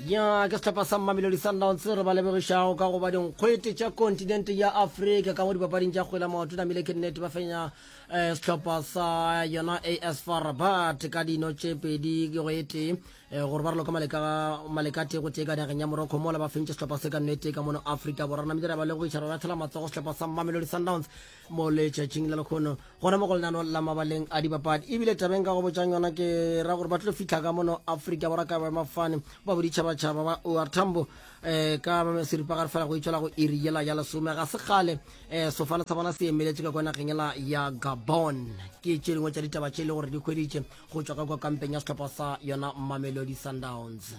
ya ke setlhopha sa mmamelodi sundowns re ba lebogišago ka goba dinkgwete tša kontinente ya afrika ka mo dipapading tša kgwela maoto namile ke nnete ba fenya um setlhopha sa yona as far rabat ka dino tše pedi ke go e tee um gore ba re loka maleka tee go tee ka nageng ya morocco mola ba fentše setlhopha se ka nnete ka mono afrika borwa namile ra ba lebogiša re lathela matsogo setlhopha sa mmamelodi sundowns mo letšatšing la lekgono gona mo go lenano la mabaleng a dibapadi ebile tabeng ka go botšang yona ke ra gore ba tlo fitlha ka mono aforika borwa ka boemafane ba boditšhabatšhaba ba or tambo um ka seripagare fela go itšwela go iri yela ya lesome ga se kgale um sefala sa bona se emeletše ka kwa nageng ela ya gabon ke tše dingwe tša ditaba tše e le gore di hweditše go tšwa ka kwa kampeng ya sehlopha sa yona mamelodi sundowns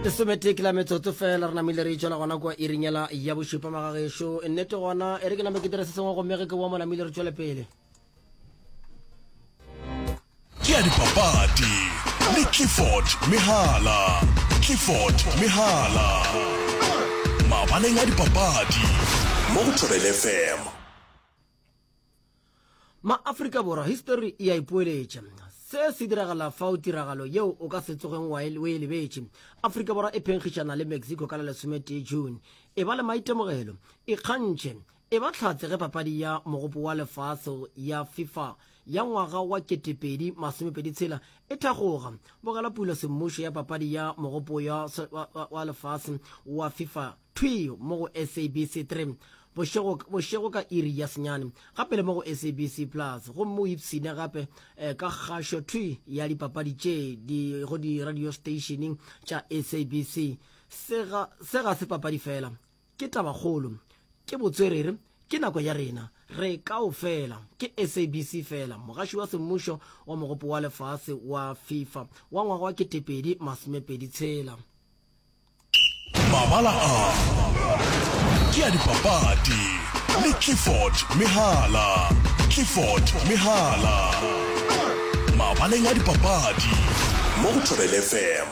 lesometee ke la metsotso fela re namile re itšwela gona kua iringela ya bošupa magagešo nnete gona e re ke name ke dire se sengwe gomme ge ke boa mo namile re tšwele pele ke ya dipapadi le clifford mehala clifford mehala mabaleng a dipapadi mo go thobele fm Ma Afrika Borwa, history e a ipoeletša. Se se diragala fa o tiragalo yeo o ka se tsogeng wa e, o e lebetše. Afrika Borwa e phenkgišana le Mexico ka la lesometee June. E ba le maitemogelo, ikgantšhe, e ba tlhatse ge papadi ya mogopo wa lefase ya FIFA ya ngwaga wa 2026 e thagoga. Bogela pulo semmušo ya papadi ya mogopo wa lefase wa FIFA Thwi mo go SABC 3 bošego, bošego ka iri ya senyane, gape le mo go SABC Plus, gomme o ipshine gape ka kgašo thwi ya dipapadi tše di go diradiosteišeneng tša SABC. Se ga, se ga se papadi feela, ke tabakgolo, ke botswerere, ke nako ya rena re kaofela. Ke SABC feela, mogaši wa semmušo wa Mogopo wa Lefase wa FIFA wa ngwaga wa ketepedi masomepedi tshela. Mabala a ke a dipapadi le Clifford Mehala. Clifford Mehala, mabaleng a dipapadi mo go Thobela FM.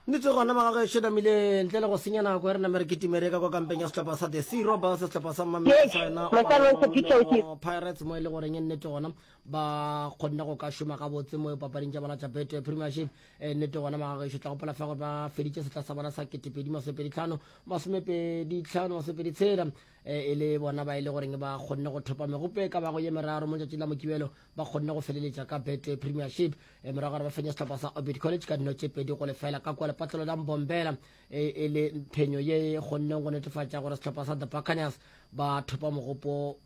Nnete gona ba gagwe Sheda Mile ntle le go senya nako e re name re kitime re ka kwa kampeng ya sehlopha sa The Sea Robbers sehlopha sa Mamelodi sa yona Orlando Pirates mo e le goreng e nnete gona ba kgonne go ka šoma gabotse mo papading tša bona tša Betway Premiership e nnete gona magagešo tla gopola fa gore ba feditše setla sa bona sa ketepedi masomepedi tlhano masomepedi tlhano masomepedi tshela e le bona ba e le goreng ba kgonne go thopa megopo e ka bago ye meraro mo tšatši la mokibelo ba kgonne go feleletša ka bet premiership e morago gore ba fenya setlhopha sa orbit college ka dino tše pedi go lefela ka kwa lepatlelo la mbombela e le phenyo ye e kgonneng go netefatša gore setlhopha sa the buccaneers ba thopa mogopo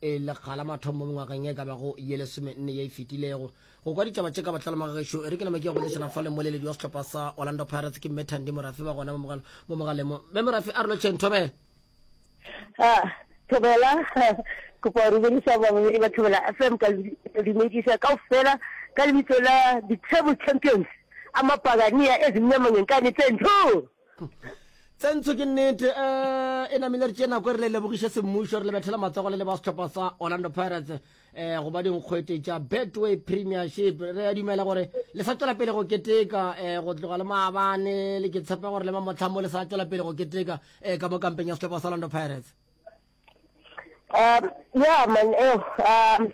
e lekga la mathomo mo mengwageng e ka bago ye lesome nne ye e fetilego go kwa ditaba tše ka botlalo maga gešo e re ke nama ke ya go lešana fa lemoleledi wa setlhopha sa orlando pirates ke mme thandi morafe ba gona mo mogaleng mo mme morafe a re lotšheng thobela ah, thobela kopa go dumedisa bamamedi ba thobela fm ka dumedisa kao fela ka lebitso la di-table champions a mapagania ezinyamanyeng ka netsentho tsentsho ke nnete um e namile re tše nako e re le lebogiše semmušo re le bethela matsogo le le ba setlhopha sa orlando pirates um go ba dinkgwete tša betway premiership re a dumela gore le sa tšwela pele go keteka um go tloga le maabane le ke tshepe gore le mamotlhang mo le sa tšwela pele go keteka um ka mo kampeng ya setlhopha sa orlando pirates um ya man um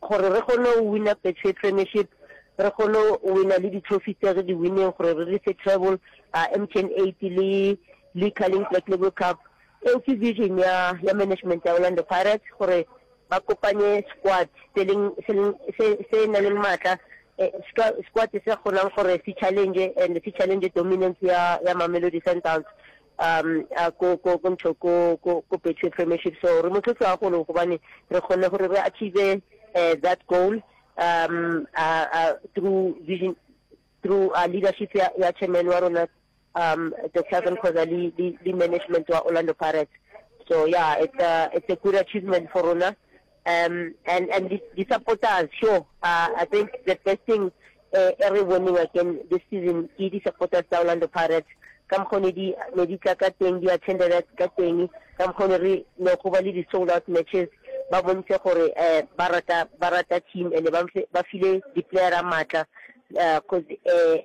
Gore re kgone go wina Betway Premiership, re kgone go wina le di-trophy tse re di winneng gore re rise treble, MTN 8 le le Carling Black Label Cup. Eo ke vision ya ya management ya Orlando Pirates gore ba kopanye squad se leng se leng se se na leng matla, squad se kgonang gore se challenge and se challenge dominance ya ya Mamelodi Sundowns. um a ko ko ko ntho ko ko ko betway premiership so re motlotlo a golo gobane re kgonne gore re achieve uh, that goal um uh, uh, through vision through uh, leadership ya, ya chairman wa rona um the southern khoza le, le, le management wa orlando pirates so yeah it's a, it's a good achievement for rona Um, and, and the, the supporters, sure, uh, I think the first thing uh, every winning again this season, ke the supporters tsa Orlando Pirates, ka mokgwa ne di ne di tla ka teng di attended ka teng ka mokgwa ne re ne go ba le di sold out matches ba bontshe gore eh ba rata ba rata team and ba ba file di player a matla eh cause eh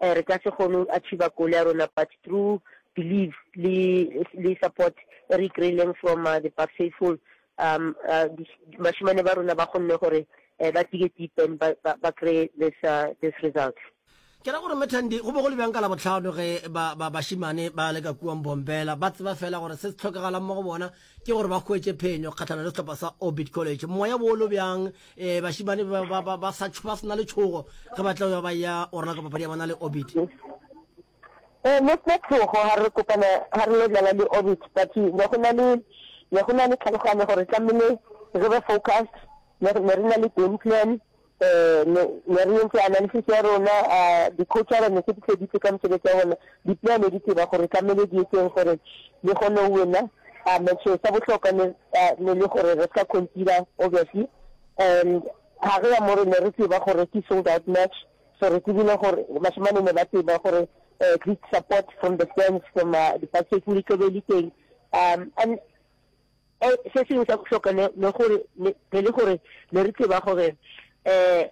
Ee, re ka se kgone go achieva goal ya rona but through believe le le support e re e kry-ileng from uh, the Bucks faithful um uh, di- bashemane ba rona ba kgonne gore eh, ba dige deep and ba ba- ba kry this uh, this result. Ke ra gore Mme Thandi, go be go le bjang ka Labohlano ge ba ba bašemane ba le ka kua Mbombela ba tseba fela gore se se tlhokagalang mo go bona ke gore ba hwetše phenyo kgahlana le sehlopha sa Orbit College. Moya wo lo bjang eh, bašimane ba, ba, ba, ba sa tšh- ba se na le tšhogo ge ba tla ba ya o ralaka papadi ya bona le Orbit? Eh, ne sena tšhogo ga re kopana ga re lo dlala le Orbit but ne go na le ne go na le tlhaloganyo gore tlamehile re be focused ne re ne re na le game plan Me, ya re yentše analysis ya rona, a dikhouthara ne se di feditše ka mosebetsi wa bona. Dipea ne di tseba gore tlamehile di etseng gore di kgone go wena. A matches sa bohlokwa ne, a, ne le gore re ska conceder, obviously. And gare ya moo re ne re tseba gore ke sold out match, so re tsebile gore bašemane ne ba tseba gore um great support from the fans, from, a di-buses, le tlo be le teng. Um, and. um se sengwe sa bohloka ne ne gore ne ne le gore ne re tseba gore um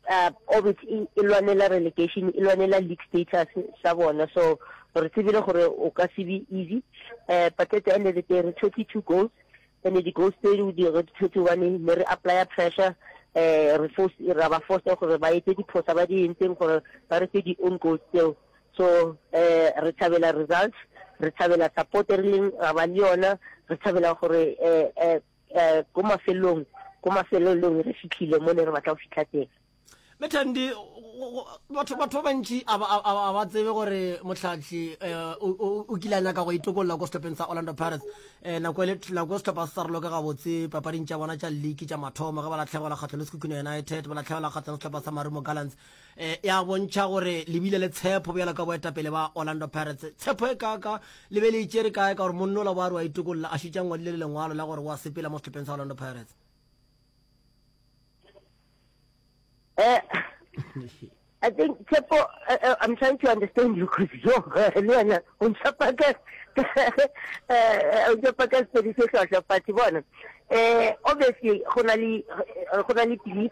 uh, orbit e e lwanela relegation e lwanela league status sa bona so re tsebile gore o ka se be easy um but at the end of the day re tshwetse two goals and di goals tse di di re tshwetse one ne re apply pressure um re force ra ba force gore ba etse diphosa ba di entseng gore ba re tse di own goals tseo So eh re thabela results, re thabela support e rileng ra ba le yona, re thabela gore eh eh eh ko mafelong ko mafelelong re fitlhile mo ne re batla go fitlha teng. Mme Thandi, batho batho ba bantši a ba a ba- a ba tsebe gore Mohlahli eh, o o- o kile a nyaka go itokolola ko sehlopheng sa Orlando Pirates Eh, nako e le nako sehlopha se sa roloke gabotse papading tša bona tša league tša mathomo ge ba latlhegelwa kgatlho le Sekhukhune United ba latlhegelwa kgatlho le sehlopha sa Marumo Gallants e ya bontšha gore le bile le tshepo bjalo ka boetapele ba orlando pirates tshepo e kaka le be le itšere kae ka gore monna ola boa re wa itokolola a šutša ngwadile le lengwalo la gore wa sepela mo setlhopheng sa orlando pirates eh, I think Chepo, uh, uh, I'm trying to understand you because yo, uh, Leona, on Chapaka, on Chapaka, so this is a party one. Uh, obviously, Honali, Honali,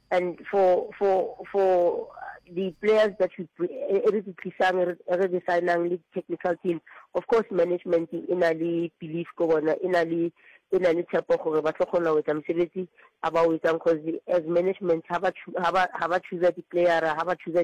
And for for for the players that we e, e re di tlisang e re di signang le technical team of course management e na le belief ko bona e na le e na le tshepo gore ba tlo kgona go etsa mosebetsi a ba o etsang cause as management ha ba ha ba choosa di-playera ha ba choosa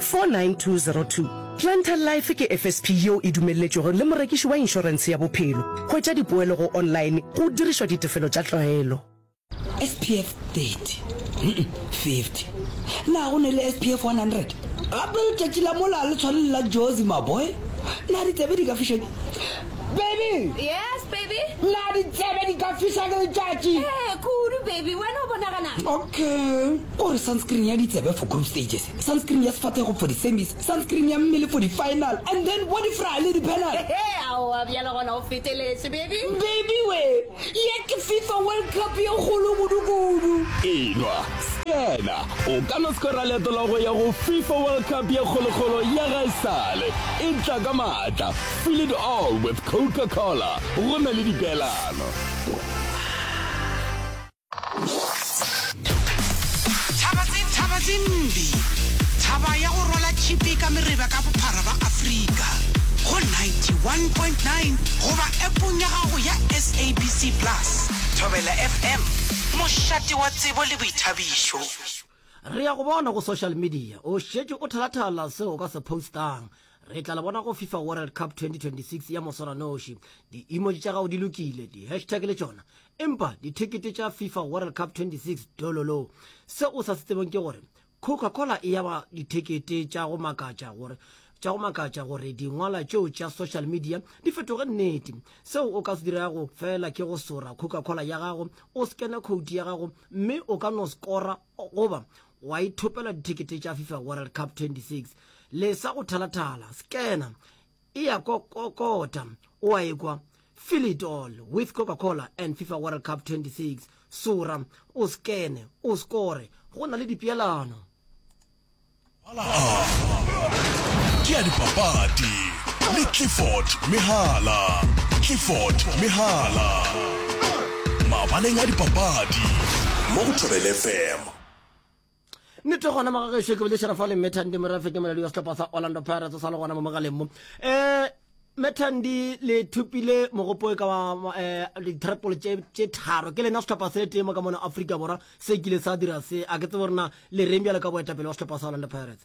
49202. Planter Life ke FSP yeo e dumelletšwego le morekiši wa inšorense ya bophelo. Hwetša dipoelo go online go dirišwa ditefelo tša tlwaelo. SPF 30, hum, 50. Na go ne le SPF 100? Gape letšatši la mola le tshwane le la Jozi, maboy. Na ditsebe di ka fišeng? Baby! Yes, baby? Na ditsebe di ka fiša ke letšatši? Ee, kudu, baby. Wena o bonaganang? Okay. O re sunscreen ya ditsebe for group stages. Sunscreen ya sefathego for di semis, sunscreen ya mmele for di final and then body fry le di penal. Hehe, aowa bjale gona o feteletse baby. Baby we, ye ke Fifa World Cup ye kgolo kudu kudu. Enwa, Stena, o ka no skora leeto la go ya go Fifa World Cup ye kgolo kgolo ya gaesale. E tla ka maatla, feel it all with Coca-Cola, go na le dipeelano. Re ya go bona go social media. O šetše o thalathala seo o ka se postang. Re tla le bona go FIFA World Cup 2026 ya moswaranoši. Di-emoji tša gago di lokile, di-hashtag le tšona Empa dithekete tša FIFA World Cup 26 dololo. Se o sa se tsebeng ke gore Coca-Cola e yaba dithekete tša go makatša gore tša go makatša gore dingwala tšeo tša social media di fetoge nnete seo o ka se dirago fela ke go sora coca-cola ya gago o scanne code ya gago mme o ka no skora goba wa ithopela dithekete tša fifa world cup 26 le sa go thalathala scanner e a kokota, o a ekwa, feel it all with Coca-Cola and FIFA World Cup 26, sora, o skene, o skore, go na le dipeelano. Mala a ke a dipapadi le Clifford Mehala. Clifford Mehala, mabaleng a dipapadi mo go Thobel FM. nnete gona magagešo ke bolešera fa le methandi morafete moladi wa setlhopha sa orlando pirates o sa le gona mo mogaleng mo um methandi le thupile mogopo ka wa eh, ditrapole tše tharo ke lena setlhopha se tee mo ka mona aforika borwa se kile sa dira se a ke tsebo rena le reng bjalo ka boetapele wa setlhopha sa orlando pirates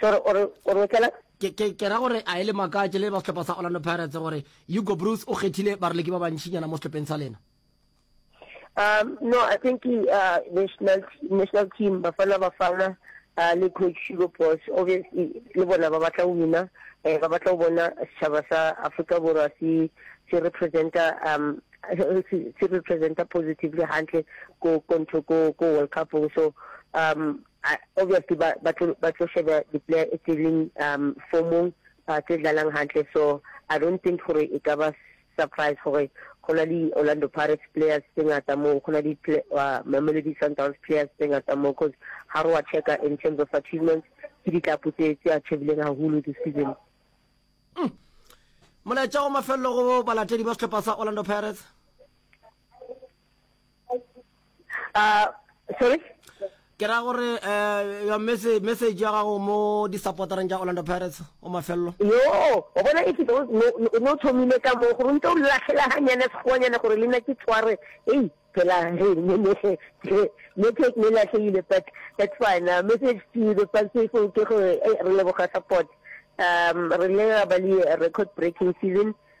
Sorry, ore ore o tlela? Ke ke ke ra gore a ele makatše le ba sehlopha sa Orlando Pirates gore Hugo Broos o kgethile baroleki ba bantšinyana mo sehlopheng sa lena. Um no, I think uh, national national team Bafana Bafana uh, le coach Hugo Broos obviously le bona ba batla go wina eh, ba batla go bona setšhaba sa Afrika Borwa se se representa um se representa positively hantle ko ko ko ko World Cup so um A, obviously ba ba tlo ba tlo sheba di player e tse leng um formong ba tse dlalang hantle so I don't think gore e ka ba surprise gore go na le Orlando Pirates players tse ngata moo go na le uh, Mamelodi Sundowns players tse ngata moo because ha re wa checka in terms of achievements ke ditlapo tse tse achievileng haholo this season mm. molaetša wa mafelelo go balatedi ba sehlopha sa Orlando Pirates uh, sorry ke ra gore um your message message ya gago mo di-supportereng tša orlando pirates o mafelelo yo o bona e fito o ne o thomile ka moo gore o ntse o latlhela ganyane sekgoanyane gore le nna ke tshware ei phela network ne latlhegile but that's fine uh, message to the fans people ke gore re leboga support um re le ba le record breaking season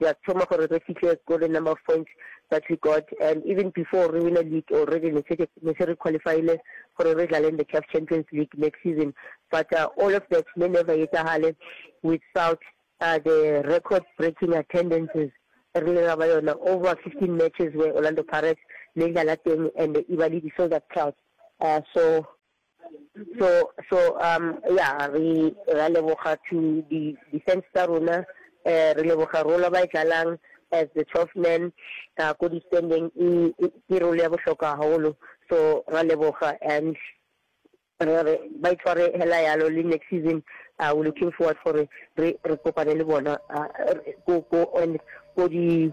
ya thoma gore re fihle ko le number of points that we got and even before re wina league already ne se ne se re qualifyile gore re dlale in the CAF Champions League next season but uh, all of that ne never etsagale without uh, the record breaking attendances re le ba yona over 15 matches where Orlando Pirates le dlala teng and e ba le di sold out crowd uh, so So, so, um, ya, re, ra leboga to di, defense tsa rona, eh, re leboga role ba e dlalang as the 12 men, uh, ko di standing, e, e, ke role ya bohlokwa haholo, so ra leboga and re re ba itshware hela yalo le next season uh, we looking forward for re re kopane le bona uh, ko ko and ko di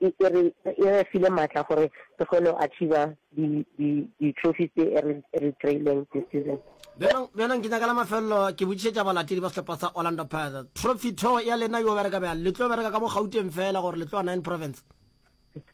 E e re e re file maatla gore re kgone go achiever di di di trophies tse e re e re kry-ileng this season. Bjalo bjalo nke nyaka la mafelelo ke botšišetša balatedi ba sehlopa sa Orlando Pirates. Trophy tho ya lena yo bereka bjang? Le tlo bereka ka mo Gauteng feela gore le tloa Nine Province?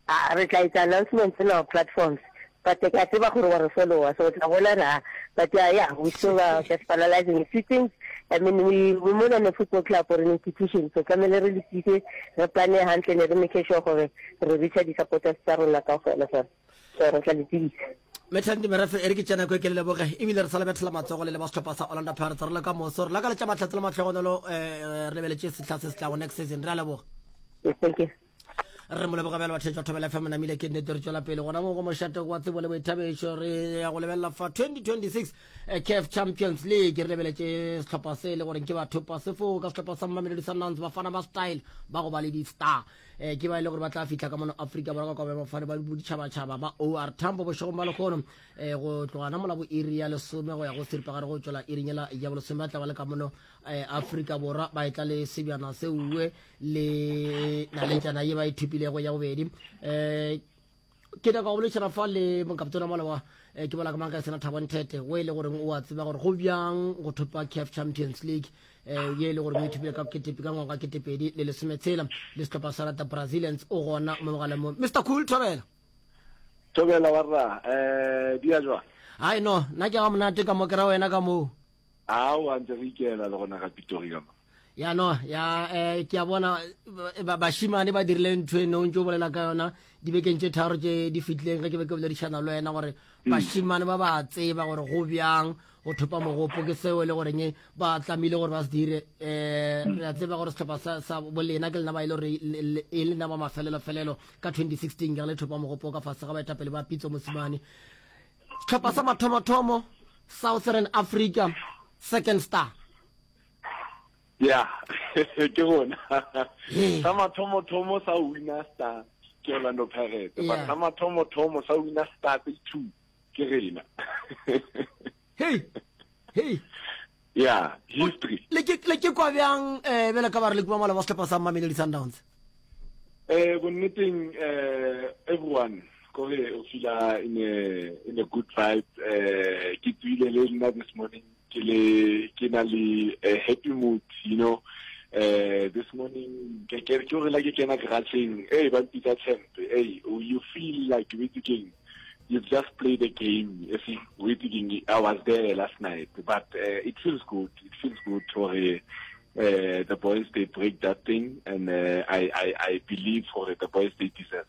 Aa re tla etsa announcements in our platforms But ke a tseba gore wa re followa so o tla bona ra but yeah, yeah we still are just finalizing a few things I mean we we more than a football club or an institution so tlamehile re lokise re plane hantle ne re make sure gore re reacha di-supporters tsa rona ka gona so so re tla le tsebisa metlhanti merafe e re ke tsena ko ke le leboge ebile re sa lebethela matsogo le le ba setlhopha sa orlando pirates re le ka moso re lakaletša matlhatse le matlhogonolo um re lebeletše setlha se se tlago next season re a leboga Yes, thank you. re mo leboga bjale bathetšwa thobela fm namile ke nnete re tšwela pele gona mo go mošate wa tsebo le boithabešo re ya go lebelela fa 2026 eh, caf champions league re lebeletše sehlopha se e le goreng ke batho pasefo ka sehlopha sa mmamelodi sundowns bafana ba style ba go ba le di-star um ke ba e le gore ba tla fitlha ka mono afrika borwa ka kobe bafane ba boditšhabatšhaba ba or tambo bošegong ba lekgono um eh, go tlogana mola bo iri ya lesome go ya go seripagare go tšwela irinyela ya bolesome ba tla ba le ka mono um afrika borwa ba e tla le sebjana seuwe um le naletšana ye ba e thupilego ya bobedi um ke nyaka go bolešana fa le monkapitona mola wa eh, ke bola ka mang ka sena thabo nthete o e le goreng o a tseba gore go bjang go thopa caf champions league um ye e le gore o ithopile ka ketepe ka ngwaga ketepedi le lesometshela le setlhopha sa rata brazilians o gona mo mogaleng mo mr cool thobela thobela warra um eh, di ya jwang hai no nna ke ga monate ka mo kera wena ka moo ao a ntse re ikela le gona ga pitori ka mo ya no ya eh, ke a bona bašimane ba dirile ntho e nong tse o bolela ka yona dibekeng tse tharo tse di fitlileng ge ke be ke boledišana le wena gore mm. bašimane ba ba tseba gore go bjang go thopa mogopo ke seo e le goreng e ba tlamile gore ba se dire um re a tseba gore setlhopha sa bolena ke lena ba e le gore e le nna ba mafelelo-felelo ka 2016 ke re le thopa mogopo ka fase ga baetapele ba pitso mosimane setlhopha sa mathomo-thomo southern africa second star ya ke gona sa mathomo-thomo sa wina star ke orlando pirate but sa mathomo-thomo sa wina star tse two ke rena hey hey ya history le ke kwa bjang um eh, bele ka ba re le kumamala ba setlhopha sa mmameledi sundowns um bonneteng um everyone kore o fila in a good vibe um ke tswile le nna this morning ke le ke na le eh, happy mood you know eh this morning ke ke ke re la ke kena garageng hey ba mpitsa champ hey oh, you feel like you witse king you've just played a game if you witse king i was there last night but uh, it feels good it feels good for uh, the boys they break that thing and uh, i i i believe for the boys they deserve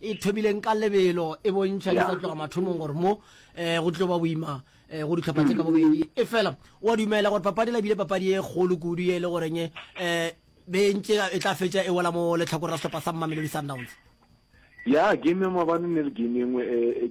e thobileng ka lebelo e bontšha di ka tloga mathomong gore mo um go tlo ba boima um go ditlhopha tse ka bobedi e fela wa dumela gore papadi la bile papadi e kgolo kudu e le goreng um bentse e tla fetša e wela mo letlhakore la setlhopha sa mmamelodi sundowns ya game ya mabane ne le game engwe e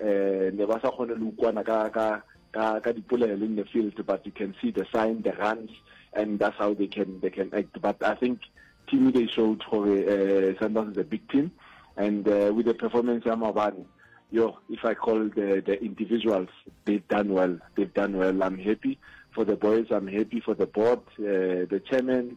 um ne ba sa kgone le ukwana ka ka ka ka dipolelo in the field but you can see the sign the runs and that's how they can they can act but i think team they showed gore uh, sundowns is a big team and uh, with the performance ya mabane yo if i call the the individuals they've done well they've done well i'm happy for the boys i'm happy for the board uh, the chairman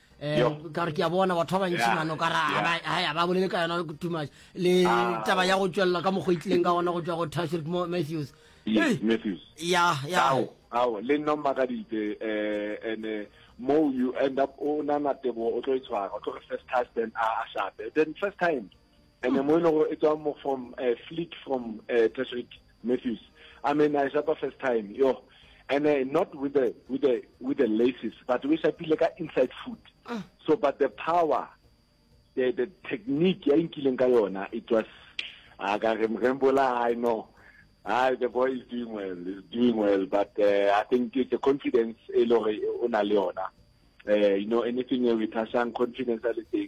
um ka gore ke a bona batho ba bantši mano ka ra ba bolele ka yona too much le ah. taba ya go tswelela ka mokgwa itlileng ka gona go tswa go tashrik matthews ya ya ao le nna mmakaditse um eh, ande mo you end up o nana tebogo o tlo e tshwara o tlo re first husband a a shape then first time and mo e lego e tswa mo from uh, fleet from uh, Tashreed Matthews I mean I shapa first time yo and uh, not with the with the with the laces but we shapile ka inside foot ah. so but the power the the technique ya inkileng ka yona it was a ah, ka re mrembola I know Ah, the boy is doing well. He's doing well, but uh, I think it's a confidence. Eh, eh, eh, you know, anything we pass on confidence, everything.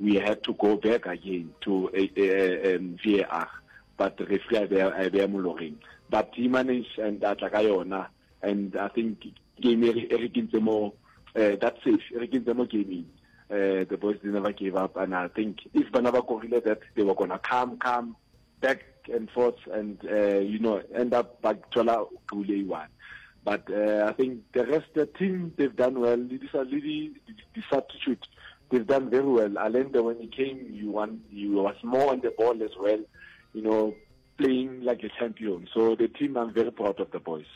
We had to go back again to uh, uh, um, VAR but referee a beya a beya moloreng but he managed and a tla ka yona and i think game e re kentse mo uh, that safe e re kentse mo gaming uh, the boys they never gave up and i think if bana ba korile that they were gonna come come back and forth and uh, you know end up ba thola kule one but uh, i think the rest the team they've done well le di le di di substitute they've done very well alenda when he came you want you was more on the ball as well you know playing like a champion so the team i'm very proud of the boys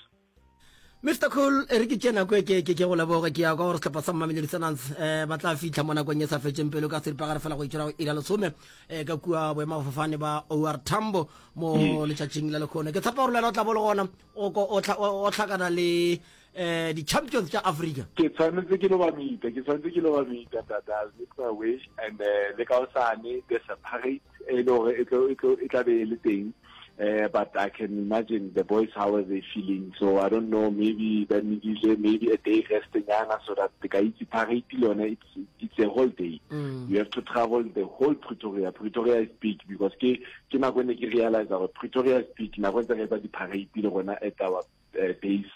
Mister Cool, e re ke tše nako e ke ke ke go leboge ke ya kwa gore sehlopha sa Mamelodi Sundowns eh, ba tla fihla mo nakong e sa fetšeng pelo ka seripagare fela go itšwela go ira lesome eh, ka kua boemafofane ba OR Tambo mo hmm. letšatšing la lekgono ke tshepa gore le wena o tla bo le gona o tlhakana le eh di-champions tša africa ke tshwanetse ke lo ba mita ke tshwanetse ke lo ba mita tata make my wish and eh, le ka osane there's a parade e le gore e, e, e tla be e le teng Uh, but I can imagine the boys, how are they feeling? So I don't know, maybe that Nidile, maybe a day rest in Ghana so that the Kaiti Paris it's, it's a whole day. Mm. You have to travel the whole Pretoria. Pretoria is big because ke, ke na kwene ke realize that Pretoria is big. Na kwene ke ba di parade le gona at our uh, days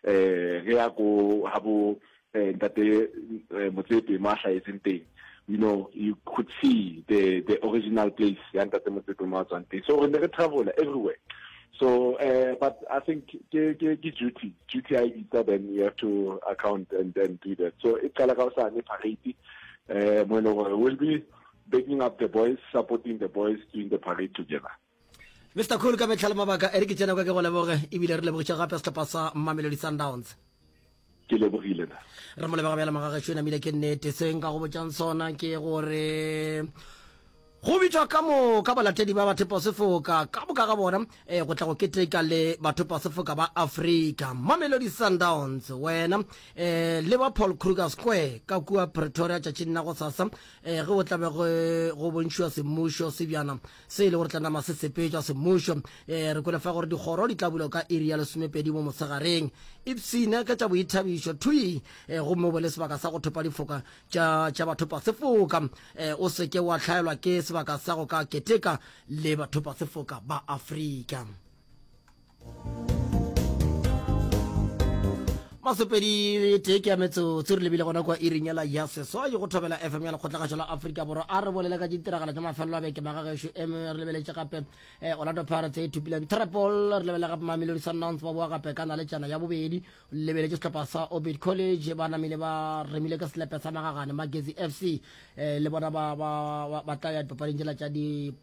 eh ge ya go ha bo eh, ntate eh, motsepe mo a hlahetseng teng you know you could see the the original place ya ntate motsepe mo a tswang teng so re ne re travela everywhere so uh, but i think ke ke ke duty duty i bitsa then you have to account and then do that so e qala ka sa ne parade eh mo e leng gore will be baking up the boys supporting the boys doing the parade together Mr Cool ka mehla le mabaka e re ke tsena kwa ke go leboge ebile re lebogitše gape sehlopha sa Mamelodi Sundowns ke lebogile na re mo lebega bjale magageso e namile ke nnete se nka go botšang sona ke gore go bitšwa ka moka balatedi ba batho pasefoka ka boka ga bona um go tla go keteka le batho pasefoka ba afrika mamelodi sundowns wena um le ba paul kruger square ka kua pretoria tšatšing la go sasa um ge o tlabe go bontšhiwa semmušo sebjana se e le gore tla nama se sepetšwa semmušo. E, re kwele fa gore dikgoro di tla bulwa ka iri ya lesomepedi mo mosegareng. Ipsene ka tša boithabišo, thwi, e, gomme o be le sebaka sa go thopa difoka tša, tša bathopasefoka. E, o se ke wa hlaelwa ke sebaka sa go ka keteka le bathopasefoka ba Afrika. masopedi tee ke ya metsotso re lebile gona kwa irinyela ya seswai go thobela fm ya lekgotlagašo la aforika borwa a re bolele ka ditiragalo tsa mafelelo a beke magagešo em re lebeletse gape um eh, orlando pirates e thupileng trapol re lebele gape mamelodi sundowns ba boa gape ka naletšana ya bobedi lebeletse setlhopha sa obit college ba namile ba remile ka selepe sa magagane magezi f c um eh, le bona ba tla ya dipapading tšela tša di